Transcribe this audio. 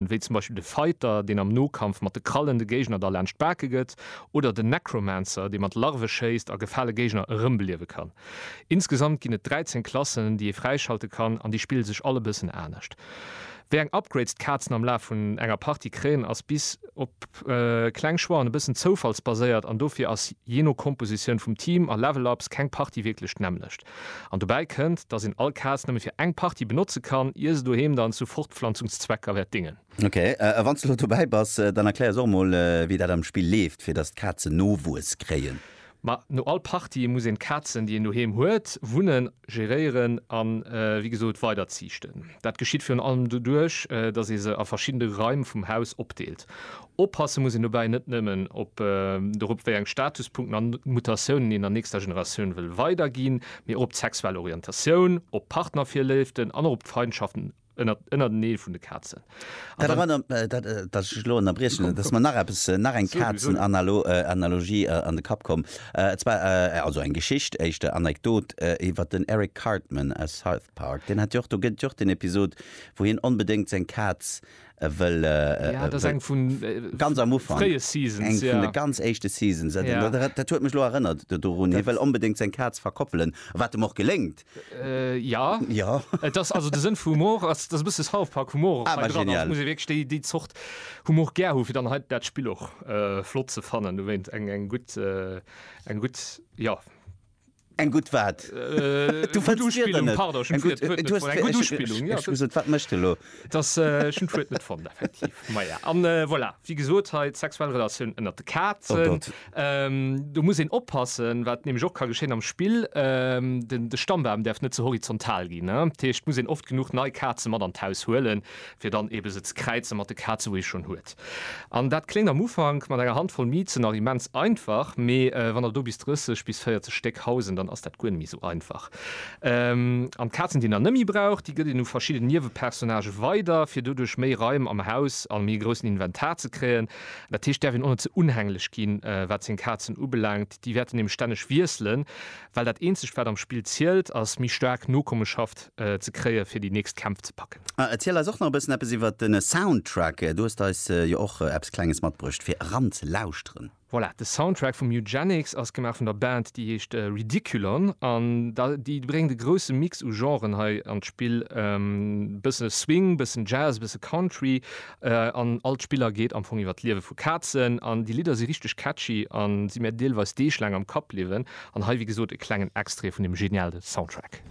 wéi zum Beispill de Fighter, deen am Nokampf mat de Krallen de Géigner da laanscht d'Bake gëtt, oder den Necromancer, dee mat Larve schéisst a gefale Géigner erëmbeliewe kann. Insgesamt ginn et 13 Klassen, déi ee fräischalte kann, an déi spille sech all e bëssen anescht. Wéi eng Upgrades d'Kazen am Laf vun enger Partie kréien, ass bis op kleng Choixen e bëssen zoufallsbaséiert, an dofir ass, jee no Kompositioun vum Team a Level-Ups, keng Partie wierklech d'nämmlecht. An dobäi kënnt, dass een all Kaz nëmme fir eng Partie benotze kann, ier se doheem dann zu Fortpflanzungszwecker wäert dingen. Ok, a wann s de elo dobäi bass, dann erklär ons och emol, wéi dat am Spill leeft, fir dass d'Kazen Nowuess kréien. Ma no all Partie muss een d'Kazen, déi een doheem huet, wunnen, geréieren a wéi gesot weiderziichten. Dat geschitt virun allem doduerch, dass ee se a verschidde Raim vum Haus opdeelt. Oppasse muss een dobäi net nëmmen op dorop, wéi eng Statuspunkten an Mutatiounen een der nächster Generatioun wëll weiderginn, mee och op d'sexuell Orientatioun, op Partnervirléiften an och op d'Feindschaften ënnerteneen vun de Kazen. Dat erënnert mech, datt ech lech elo ënnerbriechen, et ass mer nach eppes, nach eng Kazenanalogie an de Kapp komm, et war also eng Geschicht, éischter Anekdot, iwwer den Eric Cartman aus South Park. Deen hat jo och, do gëtt et jo och den Episod, wou hien onbedéngt seng Kaz E wëll ganz éischte Seasons, dat huet mech lo erënnert dorun, hie wëll onbedéngt seng Kaz verkoppelen, wat em och geléngt. Jo, et ass also de Sënn vum Humor ass, dass e bësse South Park Humor och hei dran ass. Et muss ee wierklech déi déi Zort Humor gär hu fir dann hei dat Spill och flott ze fannen. Dowéint eng gutt, eng gutt, jo. Eng gutt wat? Du fënns d'Wierder net? Pardon, ech hunn d'Wuert net fonnt. Eng gutt Uspillung, jo. Ech hu gesot, wat mécht elo? Dass, ech hunn d'Wuert net fonnt, effektiv. Maja, a voilà, wéi gesot, hei d'sexuell Relatioun ënnert de Kazen. Do muss een oppassen, wat nämlech och ka geschéien am Spill, de Stammbam däerf net ze horizontal ginn. Dat heescht, et muss een oft genuch nei Kaze mat an d'Haus huelen, fir dann ebe se ze kräize mat de Kaze wou ee schonn huet. An dat kléngt am Ufank mat enger Handvoll Mizen nach immens einfach, mee wann der do bis 30 bis 40 Stéck hausen, dann ass dat guer net méi esou einfach. An d'Kazen déi een dann net méi brauch, déi gëtt een u verschidden Niewepersonnage weider, fir doduerch méi Raim am Haus a méi groussen Inventar ze kréien. Dat heescht, däerf een och net ze unhänglech ginn, wat seng Kazen ubelaangt. Déi wäerten nämlech stänneg wiesselen, well dat eenzegt, wat am Spill zielt, ass méi staark Nokommeschaft ze kréien, fir déi nächst Kämpf ze packen. A erziel eis och nach e bëssen eppes iwwert de Soundtrack. Du hues eis jo och eppes Klenges matbruecht, fir eranzelauschteren. Voilà, de Soundtrack vum Eugenics ass gemaach vun der Band, déi heescht Ridiculon. An da, déi bréngt e grousse Mix u Genren hei an d'Spill, e bësse Swing, e bëssen Jazz, e bësse Country An all d'Spiller geet am Fong iwwer d'Liewe vu Kazen. An déi Lidder si richteg catchy a si mir deelweis deeglaang am Kapp bliwwen. An hei, wéi gesot, e klengen Extrait vun deem geniale Soundtrack.